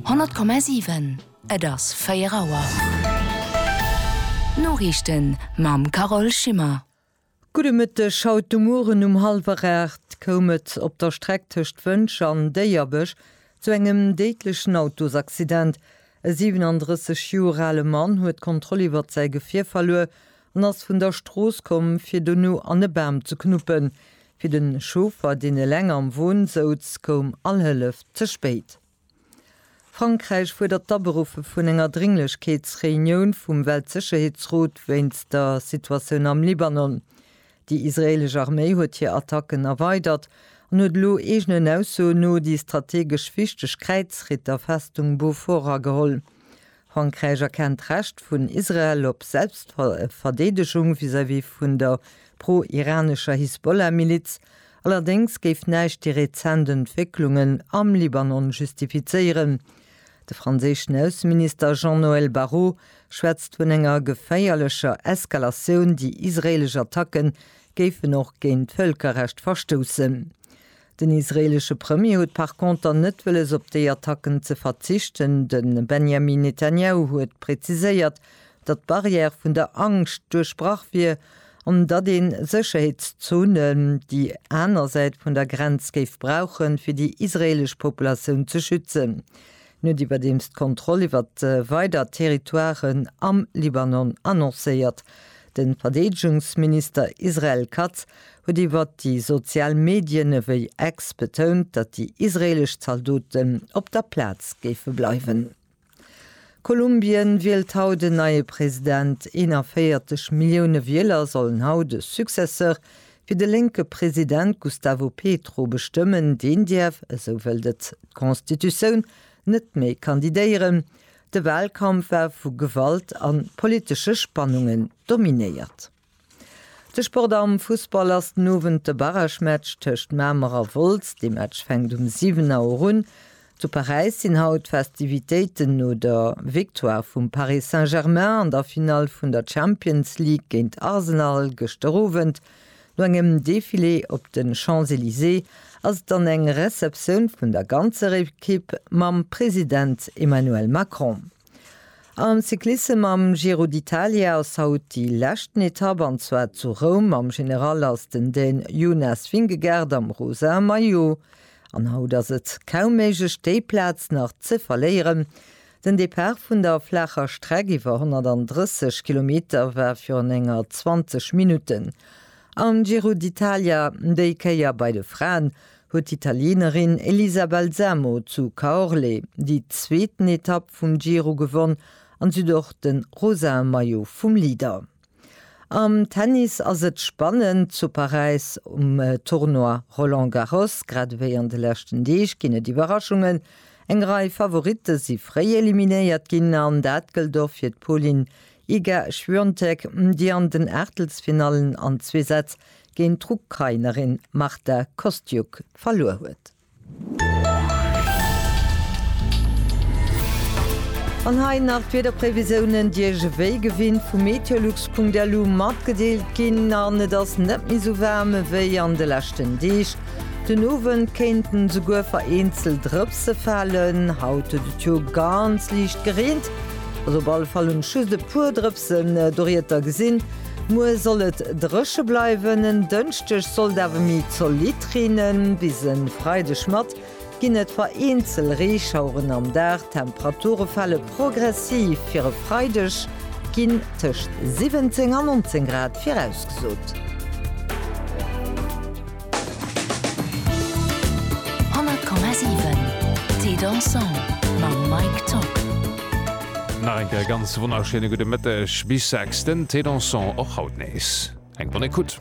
100,7 Et ass 4 Auer. D'Noriichten mam Carole Schimmer. Gudde Mëtteg. Haut de Mueren um hallwer 8 koum et op der Streck tëscht Wëntger an Déierbech zu engem déidlechen Autosaccident. E 37 Joer ale Mann huet d'Kontroll iwwert säi Gefier verluer an ass vun der Strooss komm, fir dono an e Bam ze knuppen. Fir de Chauffer, deen eleng am Won souz, koum all Hëllef ze spéit. Frankräich fuerdert d'Aberuffe vun enger Drénglechkeetsreunioun vum Weltsécherheetsrot wéinst der Situatioun am Libanon. Déi israeelesch Arméi huet hir Attacken erweidert an huet elo eegenen Aussoen no déi strategesch wichteg Kräizritterfestung Bofora geholl. Frankräich erkennt d'Recht vun Israel op Selbstverdeedegung vis-à-vis vun der pro-iranescher Hisbollah-Miliz, allerdéngs géif näischt déi rezent Entwécklungen am Libanon justifizéieren. De franséischen Ausseminister Jean-Noël Barrot schwätzt vun enger geféierlecher Eskalatioun, déi israeelesch Attacke géifen och géint d'Vëlkerrecht verstoussen. Den israeelesche Premier huet par conter net wëlles op déi Attacken ze verzichten. De Benjamin Netanjahu huet präziséiert, datt d'Barrière vun der Angscht duerchbrach wier an datt een Sécherheetszone déi aner Säit vun der Grenz géif brauchen, fir déi israeelesch Populatioun ze schützen. En huet iwwerdeems d'Kontroll iwwert weider Territoiren am Libanon annoncéiert. De Verdeedegungsminister Israel Katz huet iwwert déi sozial Medien ewéi X betount, datt déi israeelesch Zaldoten op der Plaz géife bleiwen. Kolumbien wielt haut en neie President. 41 Millioune Wieler sollen haut e Successeur Fir de lénke President Gustavo Petro bestëmmen, deen däerf, esou wëllt et d'Constitutioun, net méi kandidéieren. De Walkampf war vu Gewalt a politesche Spannungen dominéiert. De Sport am Fussball ass den Owend de Barragematch tëscht Mamer a Wolz. Dee Match fänkt um 7 Auer un. Zu Paräis sinn haut d'Festivitéiten no der Victoire vum Paris Saint-Germain an der Finall vun der Champions League géint Arsenal gëschter Owend. No engem Defilé op de Champs-Elysées ass et dann eng Receptioun vun der ganzer Ekipp mam President Emmanuel Macron. Am Cyclissem am Giro d'Italia ass haut déi leschten Etapp an zwar zu Roum. Am General ass den Dän Jonas Vingegaard am rosa Maillot An haut ass et kaum méiglech déi Plaz nach ze verléieren. Den Depart vun der flaacher Streck iwwer 130 Kilometer war virun enger 20 Minutten am Giro d'Italia. Déi Kéier bei de Fraen huet d'Italienerin Elisa Balsamo zu Caorle déi zweeten Etapp vum Giro gewonn an si huet och de rosae Maillot vum Leader. Am Tennis ass et spannend zu Paräis um Tournoi Roland Garros. Grad ewéi an de leschten Deeg ginn et Iwwerraschungen. Eng Rei Favoritte si fréi eliminéiert ginn an dat gëllt och fir d'Polin Iga Świątek, déi an den Aachtelsfinallen an zwee Sätz géint d'Ukrainerin Marta Kostyuk verluer huet. An hei nach d'Wiederprévisiounen, déi Iech wéi gewinnt vu Meteolux.lu matgedeelt ginn. An et ass net méi sou waarm ewéi an de leschten Deeg. Den Owend kéinten esouguer vereenzelt Drëpse falen. Haut huet et jo ganz liicht gereent, also op alle Fall hunn ech just e puer Drëpsen doriedder gesinn. Muer soll et dréche bleiwen, en Dënschdeg sollt awer méi zolidd reenen. Bis e Freideg mat ginn et vereenzel Reeschaueren am Dag, d'Temperature fale progressiv. Fir e Freideg ginn tëscht 17 a 19 Grad virausgesot. 100,7 Thé Dansant mam Mike Zock. Nach eng Kéier e ganz wonnerschéine gudde Mëtteg bis 6, den Thé Dansant och haut nees eng bonne Écoute.